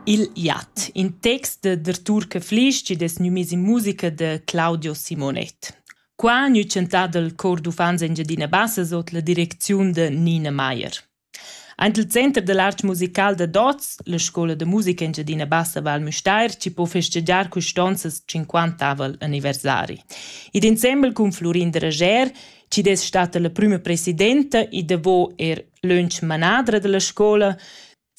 Il jat, in text d'Artur Caflisch chi'd es gnü miss in musica da Claudio Simonet. Qua gnü tschantà dal Chor d'uffants Engiadina Bassa sot la direcziun da Nina Maier. Aint il Center da l'art musical da Dots, la scoula da musica Engiadina Bassa Val Müstair, chi po festegiar custonzas 50avel anniversari. Id insembel cun Flurin Derager, chi'd es stata la prüma presidenta e davo er Lönch manadra dalla scoula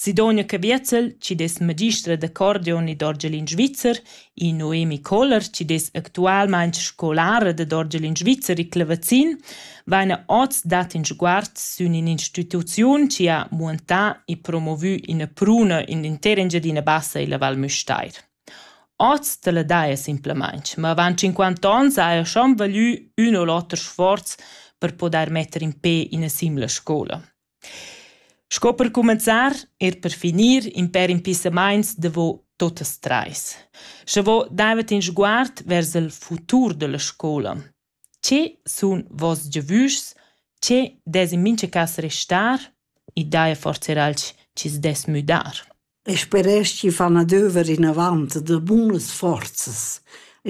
Sidonja Caviezel chi dess magistra d'accordion ed orgelin svizzer e Noemi Koller chi dess actualmaing scolara dad orgelin svizzer e clavazin vaina hoz dat ün sguard sün ün'instituziun chi ha muantà e promovü üna pruna in l'intera Engiadina Bassa illa Val Müstair. Oz dalla daja simplamaintg, ma avant tschinquanta ons haja schon valü ün u l'oter sforz per pudair metter in pe ina simla scoula. Sco per cumenzar, er per finir, in pêr impissamaints davo tuottas trais. Scha vo davent in sguard vers il futur da la scoula. Che sun voss giavüschs? Che dess in mincha cas restar? I daja forsa eir alch chi's dess müdar? E speresch chi fan adöver inavant da bunas forzas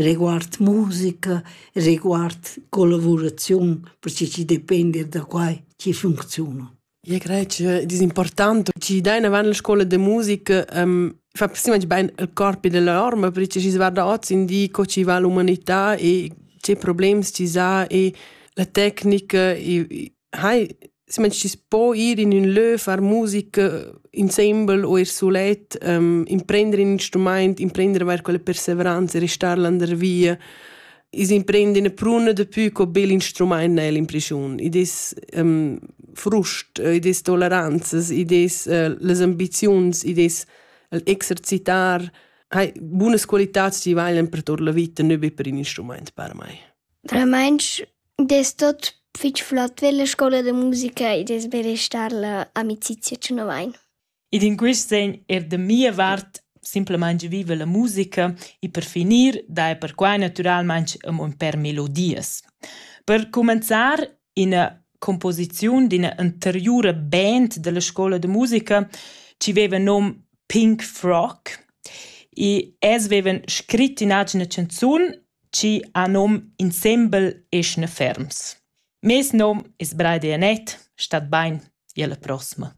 riguard musica e riguard collavuraziun perche chi depend eir da quai chi funcziuna. Eu craj ch'eu ed es important chi dain avant la scoula da musica fa semplaci bain il corp ed la orma perche schi's varda hoz in di co chi va l'umanità e che problems chi s'ha e la tecnica e hai semplaci chi's po ir in ün lö, far musica insembel o ir sulet, imprender ün instrumaint, imprender vair quella persevranza e restar landa via. is imprend in pruna de più co bel instrument nel impression i des um, frust i des toleranzas i des uh, les ambizions i des exercitar hai buonas qualitats die valen per tot la vita ne be per in instrument per mai Remensch des tot fitg flott per la scola de musica e des berestar la amicizia ce novain Ed in quist sen eir da mia vart simplamaing viva la musica e per finir daja perquai natüralmaing amo ün pêr melodias. Per cumenzar üna cumposiziun d'üna anteriura band da la scoula da musica chi veiva nom Pink Frock e els veivan scrit in agina chanzun chi ha nom Insembel eschna ferms. Meis nom es Braidi Anett, stat bain, i alla prossima.